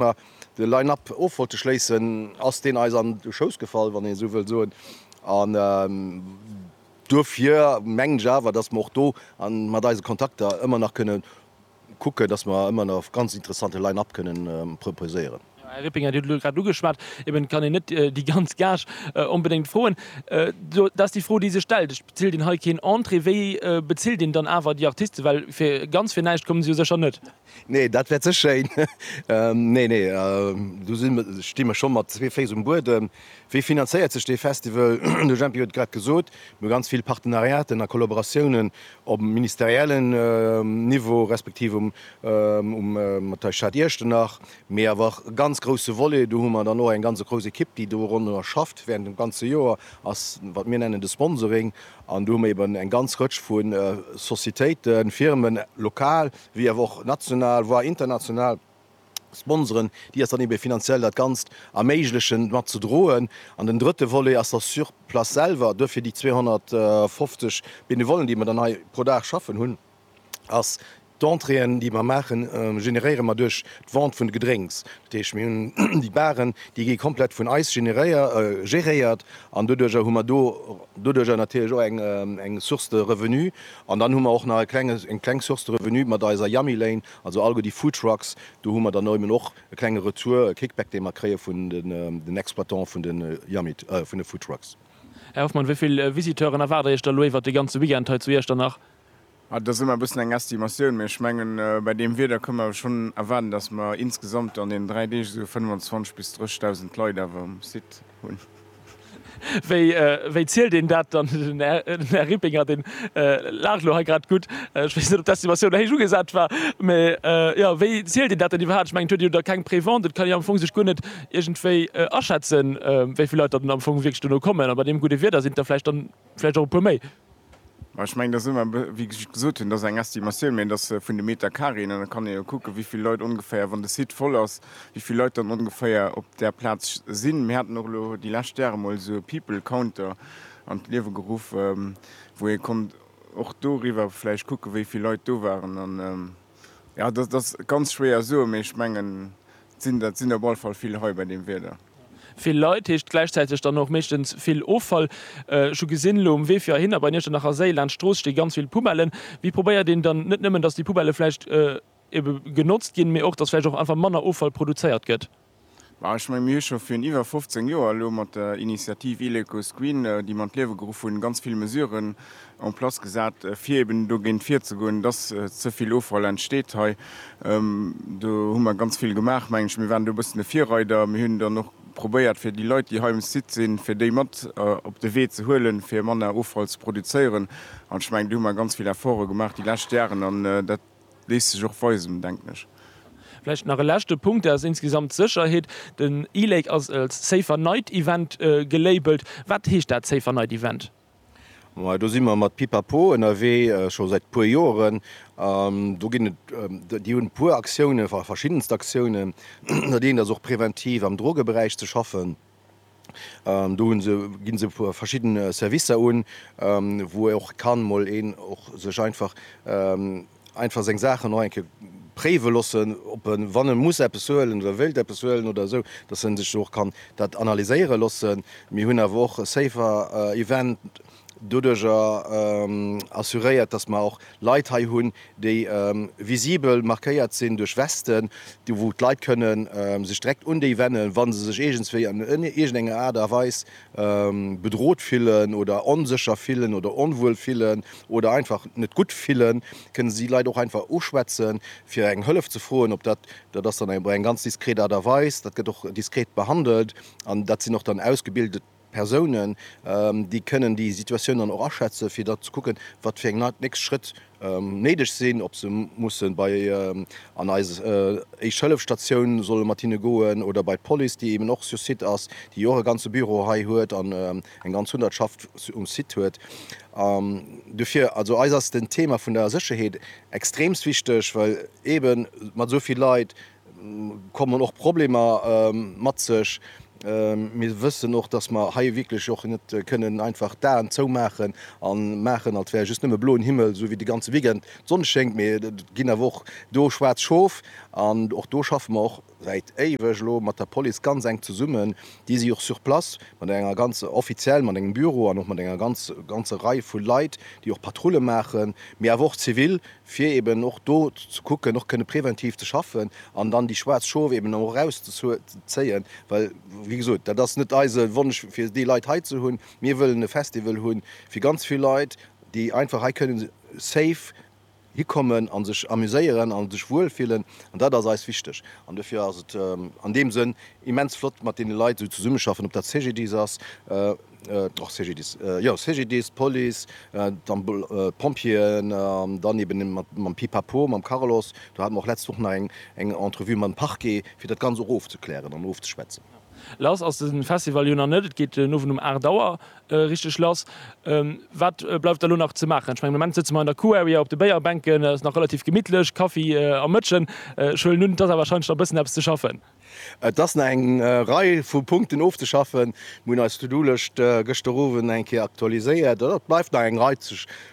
mer de Line-Up of wollte schléissen, ass deen eis an de Schouss gefall, wann een esou wëll soen. An duerfir mengen ech awer, dass mer och do mat eise Kontakter ëmmer nach kënnen kucken, dass mer ëmmer nach ganz interessante Line-Up kënnen proposéieren. Här Rippinger, Dir hutt et elo grad ugeschwat, eben kann een net déi ganz Gage onbedéngt froen. Dat ass déi Fro, déi sech stellt. Et bezilt een hei keen Entrée. Wéi bezilt een dann awer déi Artisten? Well fir ganz fir näischt komme se jo sécher net. Nee, dat wär ze schéin. Nee, nee, do si mer, sti mer scho mat zwee Féiss um Buedem. Wéi finanzéiert sech dee Festival? De Jempy huet et grad gesot, Mir hu ganz vill Partenariaten a Kollaboratiounen op ministeriellen Niveau respektiv um um mat der Stad Iechternach, mee awer och e ganz grousse Volet, do hu mer dann och eng ganz grouss Ekipp, déi do ronderëm schafft wärend dem ganze Joer, ass, wat mir nennen, de Sponsoring. An do hu mer eeben eng ganz Rëtsch vu Societéiten, Firmen, lokal wéi awer och national, voir international Sponsoren, déi eis dann ebe finanziell dat Ganzt erméiglechen mat ze droen. An den drëtte Volet ass da sur place selwer. Duerfir déi 250 Benevollen, déi mer dann hei pro Dag schaffen hunn, ass d'Entréeën, déi mer maachen, generéiere mer duerch d'Vente vun de Gedrénks. Dat heescht, mir hunn déi Baren, déi gi komplett vun eis generéier, geréiert an doduercher hu mer do doduercher natierlech och eng Source de revenu. An dann hu mer och nach e klenge, eng kleng Source de revenu mat eiser Yummy Lane, also allgo déi Food Trucks, do hu mer dann eben och e klenge Retour, e Kickback, dee mer kréie vun den Exploitantë vun de Yummy, vun de Food Trucks. Här Hoffmann, wéi vill Visiteuren erwaart Dir Iech da elo iwwert de ganze Weekend hei zu Iechternach? Ah, dat ass ëmmer e bëssen eng Estimatioun, mee ech mengen, bei deem Wieder kënne mer schonn erwaarden, dass mer insgesamt an deenen dräi Deeg esou 25 bis 30 Dausend Leit awer um Site, Wéi zielt een dat dann? Den Här Rippinger, dee laacht elo hei grad gutt. Ech weess net, ob d'Estimatioun héich ugesat war. Mä, jo, wéi zielt een dat dann iwwerhaapt? Ech mengen, et huet jo da keng Prévente. Et kann jo am Fong sech guer net iergendwéi aschätzen, wéi vill Leit dann am Fong wierklech dono kommen. A bei deem gudde Wieder sinn et der vläicht dann, Vläicht och e puer méi. Mä ech mengen, dat ass ëmmer, wéi ech gesot hunn, dat ass eng Estimatioun, mä dat ass vun de Meterkaréen an da kann ee jo kucken, wéi vill Leit ongeféier, wann de Site voll ass, wéi vill Leit dann ongeféier op där Plaz sinn. Mir haten och elo déi lescht Jahre mol esou e People Counter an d'Liewe geruff, wou ee konnt och doriwwer vläicht kucken, wéi vill Leit do waren. An jo, dat ass ganz schwéier soen, mä ech mengen, et sinn, dat sinn op alle Fall vill hei bei deem Wieder. Vill Leit heescht gläichzäiteg dann och meeschtens vill Offall. Ech hu gesinn elo um Wee fir heihinner bei Iechternacher a Séi laanscht d'Strooss sti ganz vill Poubellen. Wéi probéiert een dann net nëmmen, dass déi Poubelle vläicht ebe genotzt ginn, mee och, dass vläicht och einfach manner Offall produzéiert gëtt? Ma ech menge mir hu scho virun iwwer 15 Joer elo mat der Initiativ Ileco Screen, déi mer an d'Liewe geruff hunn, ganz vill Mesuren en place gesat, fir eben dogéint virzegoen, dass ze vill Offall entsteet hei. Do hu mer ganz vill gemaach, mengen ech. Mir waren do e bëssen de Virreider. Mir hunn dann och probéiert, fir déi Leit, déi hei um Site sinn, fir déi mat op de Wee ze huelen, fir manner Offall ze produzéieren. An ech mengen, do hu mer ganz vill Efforte gemaach déi lescht Jaren an dat léisst sech och weisen, denken ech. Vläicht nach e leschte Punkt, dat ass insgesamt d'Sécherheet. Den e-Lake ass als Safer Night Event gelabelt. Wat heescht dat, Safer Night Event? Majo do si mer mat Pipapo ënnerwee scho säit e puer Joeren an do ginn et, déi hunn e puer Aktiounen, verschiddenst Aktiounen. Dat eent ass och präventiv am Drogeberaich ze schaffen. Do hu se, ginn se verschidden Servicer un wou och kann mol een och sech einfach, einfach seng Saachen och eng Kéier préiwe loossen, ob e wann e muss eppes huelen oder wéilt eppes huelen oder esou, datt e sech do och kann dat analyséiere loossen. Mir hunn awer och e Safer Event doduerjer assuréiert, datt mer och Leit hei hunn, déi visibel markéiert sinn duerch Westen, wou d'Leit kënnen sech direkt un déi wennen, wa se sech iergendswéi an iergendenger Aart a Weis bedrot fillen oder onsécher fillen oder onwuel fillen oder einfach net gutt fillen, kënne si Leit och einfach uschwätzen, fir eng Hëllef ze froen. Ob dat, dat ass dann op eng ganz diskret Aart a Weis, dat gëtt och diskret behandelt an dat sinn och dann ausgebildet Persounen, déi kënnen déi Situatioun dann och aschätzen, fir da ze kucken, wat fir eng nächst Schrëtt néideg sinn, ob se mussen bei an eis Éischt-Hëllef-Statioun solle mat hinne goen oder bei d'Police, déi eben och sur site ass, déi och e ganze Büro hei huet an eng ganz Hundertschaft um Site huet. Dofir, also eis ass den Thema vun der Sécherheet extremst wichteg, well eben mat esou vill Leit, kommen och Problemer mat sech. Mir wëssen och, dass mer hei wierklech och net kënnen einfach d'Aen zoumaachen a maachen, als wär just nëmme bloen Himmel, esou wéi de ganze Weekend d'Sonn schéngt. Mee et ginn awer och do schwaarz Schof an och do schaffe mer och säit éiweg elo mat der Police ganz enk zesummen. Déi si och sur place mat enger ganz, offiziell mat engem Büro an och mat enger ganzer Rei vu Leit, déi och Patrulle maachen, mee awer och zivil, fir eben och do ze kucken, och kënne präventiv ze schaffen an dann déi schwaarz Schof eben och erauszezéien, well, wéi gesot, dat ass net eise Wonsch, fir déi Leit hei ze hunn. Mir wëllen e Festival hu fir ganz vill Leit, déi einfach hei kënnen safe hikommen a sech amuséieren a sech wuel fillen an dat ass eis wichteg. An dofir ass et an deem Sënn immens flott, mat deene Leit esou zesummeschaffen, ob dat CGDIS ass, Och CGDIS, jo CGDIS, d'Police, d'Pompjeeën an dann eben mam Pipapo, mam Carlos. Do hate mer och d'letzt Woch nach eng Entrevue mam Parquet, fir dat Ganz och ofzeklären an ofzeschwätzen. Lass ass de Festival jo nach net. Et geet den Owend um 8 Auer richteg lass. Wat bleift da elo nach ze maachen? Ech mengen, am Moment sëtze mer an der Q-Area op de Béierbänken. Et ass nach relativ gemittlech, Kaffi a Mëtschen. Ech huelen un, et ass awer warscheinlech nach e bëssen eppes ze schaffen. Et ass nach eng Rei vu Punkten ofzeschaffen. Mir hunn eis To-do-Lëscht gëschter Owend eng Kéier aktualiséiert. Et bleift nach eng Rei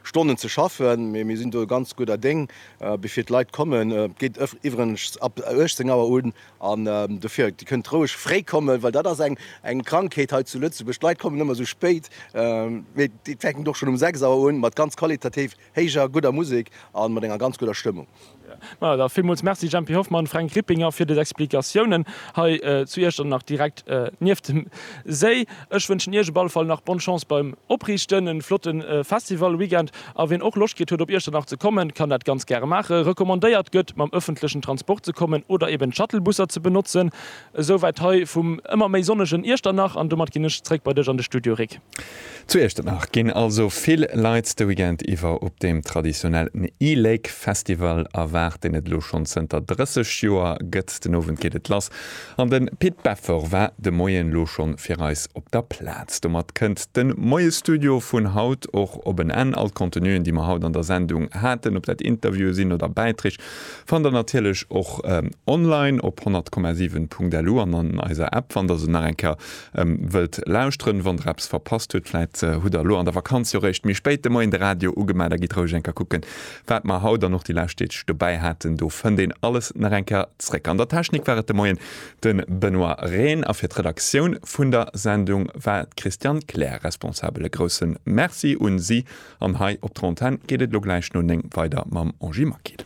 Stonnen ze schaffen, mee mir sinn do ganz gudder Déng, bevir d'Leit kommen. Et geet iwweregens ab 18 Auer un an dofir, Dir kënnt roueg fréi kommen, well dat ass eng Krankheet hei zu Lëtzebuerg, d'Leit kommen ëmmer esou spéit. Mee et fänkt och schonn um 6 Auer un mat ganz qualitativ. Héijer, gudder Musek a mat enger ganz gudder Stëmmung. Majo da, villmools Merci Jempy Hoffmann, Fränk Rippinger fir des Explikatiounen hei zu Iechternach direkt nieft dem Séi. Ech wënschen Iech op alle Fall nach Bonne Chance beim Opriichten, en flotten Festival Weekend a wien och Loscht kritt huet op Iechternach ze kommen kann dat ganz gäre maachen. Recommandéiert gëtt mam ëffentlechen Transport ze kommen oder eben d'Shuttlebusser ze benotzen. Esou wäit hei vum ëmmer méi sonnegen Iechternach an domat ginn ech zréck bei dech an de Studio Rik. Zu Iechternach ginn also vill Leit de Weekend iwwer op deem traditionellen E-Lake Festival erwaart, deen et elo schonn zënter 30 Joer gëtt. Den Owend geet et lass an de Pit Beffer war de Moien elo schonn fir eis op der Plaz. Domat kënnt de Moie-Studio vun haut och op en Enn. All d'Contenuen, déi mer haut an der Sendung haten, ob dat Interviewe sinn oder Bäiträg, fannt der natierlech och online op 100,7.lu an an eiser App. Wann der se nach eng Kéier Wëllt lauschteren, wann der eppes verpasst huet? Vläit hutt der elo an der Vakanz jo réischt méi spéit de Moien de Radio ugemaach. Da gitt roueg eng Kéier kucken, wat mer haut an och déi lescht Deeg dobäi haten. Do fënnt een alles nach eng Kéier zréck. An der Technik war et de Moien de Benoît Rehn a fir d'Redaktioun vun der Sendung war d'Christiane Kleer responsabel. E grousse Merci un si an hei op der Antenn geet et elo gläich no néng weider mam Angie Maquil.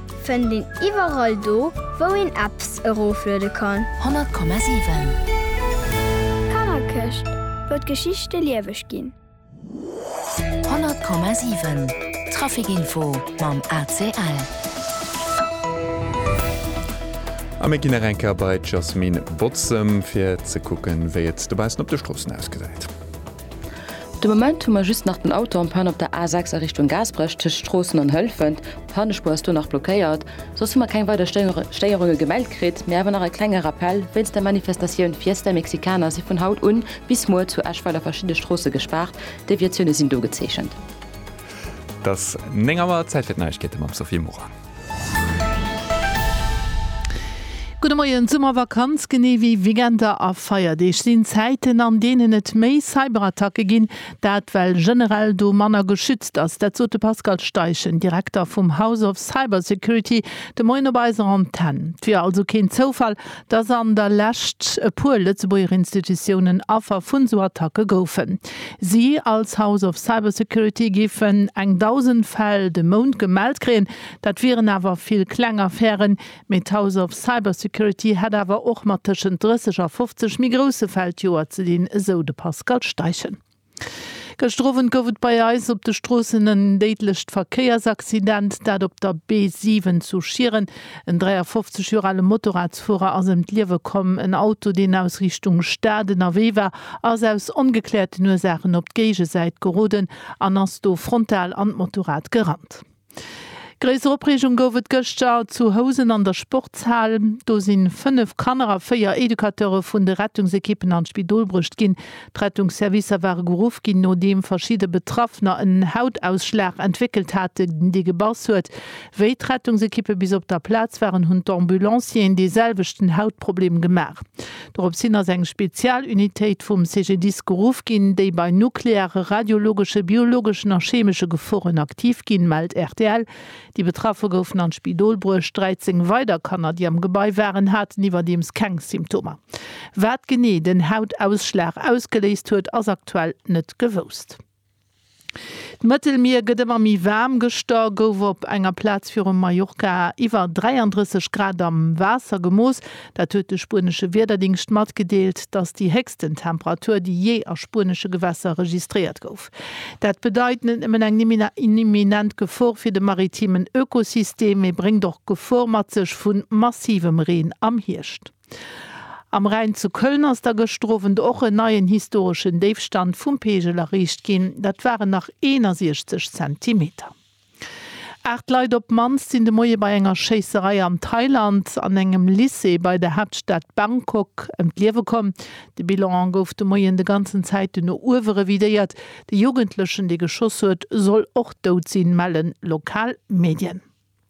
Fënnt een iwwerall do wou een Apps erofluede kann. 100,7. Kannerkëscht, wou d'Geschichte lieweg ginn. 100,7. Trafikinfo mam ACL. A mir ginn nach eng Kéier bei d'Jasmine Botzem, fir ze kucken, wéi et dobaussen op de Stroossen ausgesäit. De Moment hu mer just nach den Auto en panne op der A6 a Richtung Gaasperech tëscht Stroossen an Hëlfent. D'Pannespuer ass do nach blockéiert. Soss hu mer keng weider Stéierunge gemellt kritt, mee awer nach e klenge Rappell, Wéinst der Manifestatioun Fiesta Mexicana si vun haut un bis muer zu Eschweiler verschidde Stroosse gespaart. Deviatioune sinn do gezeechent. Et ass 9 Auer, Zäit fir d'Neiegkeete mam Sophie Morang. Gudde Moien. D'Summervakanz, genee wéi Weekender a Feierdeeg, sinn Zäiten, an deenen et méi Cyberattacke ginn. Dat well generell do manner geschützt ass. Dat sot de Pascal Steichen, Direkter vum House of Cybersecurity, de Moien op eiser Antenn. 't wier also keen Zoufall, dass an der Lescht e puer Lëtzebuerger Institutiounen Affer vun esou Attacke goufen. Si als House of Cybersecurity géifen eng dausend Fäll de Mount gemellt kréien, dat wieren awer vill kleng Affären, mee d'House of Cybersecurity hätt awer och mat tëschent 30 a 50 méi grousse Fäll d'Joer ze dinn, esou de Pascal Steichen. Gëschter Owend gouf et bei eis op de Stroossen en déidlecht Verkéiersaccident, dat op der B7 zu Schieren. En 53 Joer ale Motorradsfuerer ass ëm d'Liewe komm. En Auto, deen aus Richtung Stad ënnerwee war, ass aus ongekläerten Ursaachen op d'Géigesäit geroden an ass do frontal an d'Motorrad gerannt. Gréisser Opreegung gouf et gëschter zu Housen an der Sportshal. Do si 5 Kanner a 4 Educateure vun de Rettungsekippen an d'Spidol bruecht ginn. D'Rettungsservicer ware geruff ginn, nodeem verschidde Betraffener en Hautausschlag entwéckelt haten, dee gebass huet. Wéi d'Rettungsekippe bis op der Plaz waren, hunn d'Ambulancieren dee selwechten Hautproblem gemaach. Dorops hin ass eng Spezialunitéit vum CGDIS geruff ginn, déi bei nukleare, radiologesche, biologeschen a chemesche Geforen aktiv ginn, mellt rtl. Déi Betraffe goufen an d'Spidol bruecht. 13 weider Kanner, déi am Gebai waren, haten iwwerdeems keng Symptomer. Wat genee den Hautausschlag ausgeléist huet, ass aktuell net gewousst. D'Mëttelmier gëtt ëmmer méi waarm. Gëschter gouf op enger Plaz virum Mallorca iwwer 33 Grad am Waasser gemooss. Dat huet de spuenesche Wiederdingscht matgedeelt. T'ass déi héchsten Temperatur, déi jee a spuenesche Gewässer registréiert gouf. Dat bedeit net nëmmen eng imminent Gefor fir de maritimen Ökosystem, mee bréngt och d'Gefor mat sech vu massivem Reen am Hierscht. Am Rhäin zu Köln ass da gëschter Owend och en neien historeschen Déifstand vum Peegel erreecht ginn. Dat waren nach 61 Zentimeter. Aacht Leit op d'mannst sinn de Moie bei enger Schéisserei an Thailand an engem Lycée bei der Haaptstad Bangkok ëm d'Liewe komm. De Bilan gouf de Moien de ganzen Zäiten no uewe revidéiert. De Jugendlechen, dee geschoss huet, soll och dout sinn, mellen lokal Medien.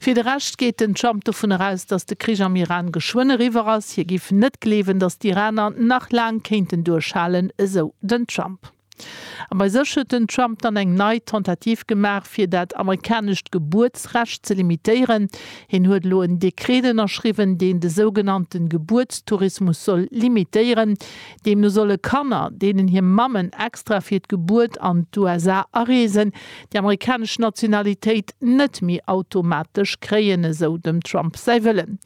Fir de Rescht geet den Trump dovun eraus, datt de Krich am Iran geschwënn eriwwer ass. Hie géif net gleewen, datt d'Iraner nach laang kéinten duerchhalen, esou den Trump. A bei sech huet den Trump dann eng nei Tentativ gemaach, fir dat amerikanescht Gebuertsrecht ze limitéieren. Hien huet elo en Dekret ënnerschriwwen, deen de sougenannte Gebuertstourismus soll limitéieren. Deemno solle Kanner, deenen hir Mammen extra fir d'Gebuert an d'USA areesen, déi amerikanesch Nationalitéit net méi automatesch kréien, esou dem Trump säi Wëllen.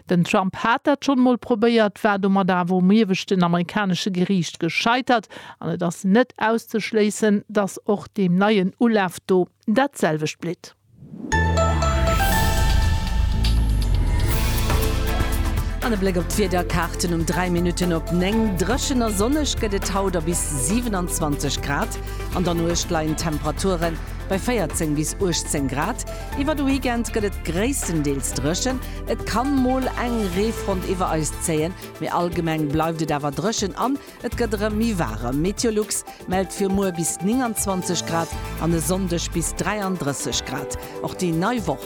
Den Trump hat dat schonn emol probéiert, war domat awer um ieweschten amerikanesche Geriicht gescheitert an et ass net auszeschléissen, datt och deem neien Ulaf do dat selwecht blitt. An e Bléck op d'Wiederkaarten um 3 Minutten op 9, Dréchen a sonneg gëtt et haut a bis 27 Grad. An der Nuecht leien d'Temperature bei 14 bis 18 Grad. Iwwer de Weekend gëtt et gréisstendeels dréchen, et ka mol eng Reefront iwwer eis zéien, mee allgemeng bleift et awer dréchen an et gëtt erëm méi waarem. Meteolux mellt fir muer bis 29 Grad an e Sonndeg bis 33 Grad. Och déi nei Woch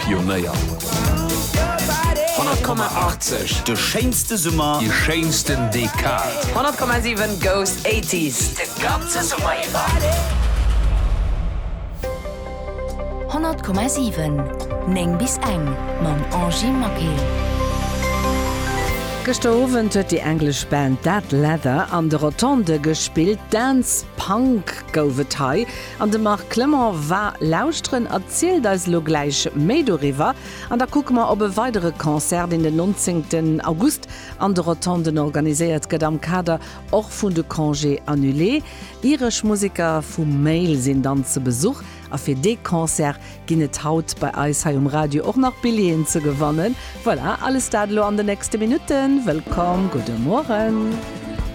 Pionéier. 100,80, De schéinste Summer. Déi schéinsten Dekad. 100,7 goes 80s de ganze Summer iwwer. 100,7 9 bis eng mam Angie Maquet. Gëschter Owend huet déi englesch Band Dead Leather an de Rotondë gespillt. Dance Punk gouf et hei. An de Marc Clement war lauschteren a zielt eis elo gläich méi doriwwer. An da kucke mer op e weidere Concert, deen den 19 August an de Rotonden organiséiert gëtt, am Kader och vun de Congés annulés. Iresch Museker vu Mail sinn dann ze Besuch a fir dee Concert ginn et haut bei eis hei um Radio och nach Billjeeën ze gewannen. Voilà, alles dat elo an de nächste Minutten. Wëllkomm, gudde Mueren.